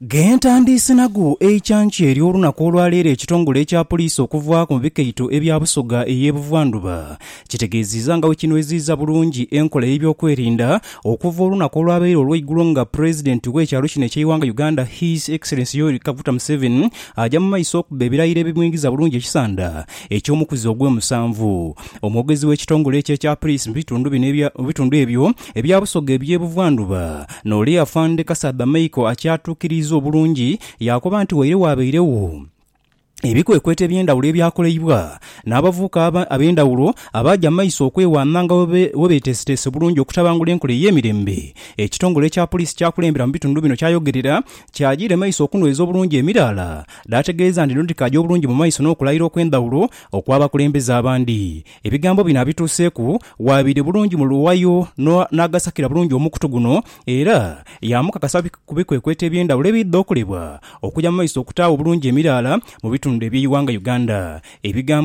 Ghentandiise nago eikyankya eryo olunaku olwaleero ekitongole ekya poliisi okuvaaku mu bikaito ebya Busoga eye Buvandhuba kitegeziiza nga bwekinweziiza bulungi enkola eyebyokwerinda okuva olunaku olwabaire olweigulo nga president wekyalo kino ekyeiwanga Uganda His Excellency Yoweri Kaguta Museveni aja mu maiso okubba ebirayiro ebimwingiza bulungi ekisanda ekyomukuzi ogwemusanvu. Omwogezi wekitongole ekyo ekya poliisi mu bitundu bino ebya mu bitundu ebyo Ebya Busoga eby'e Buvandhuba. N'ole Afande Kasaadha Michael akyatuukiriiza obulungi yaakoba nti waire waabairegho ebikwekweto eby'endhawulo ebyakoleibwa n'abavubuka ab'endhawulo abaaja mu maiso okwewaana nga bwebeteeseteese bulungi okutabangula enkola ey'emirembe ekitongole kya Poliisi kyakulembera mu bitundu bino kyayogerera kyajiire maiso okunweza obulungi emiraala dh'ategeeza nti dhino dhikaaja obulungi mu maiso n'okulayira okw'endhawulo okw'abakulembeze abandi Ebigambo bino abituuseeku waabire bulungi mu luwayo n'agasakira bulungi omukutu guno era yaamukakasa ku bikwekweto eby'endhawulo ebidha okolebwa okuja mu maiso okutaawo obulungi emiraala mu bitundu eby'eighanga Uganda. Ebigambo.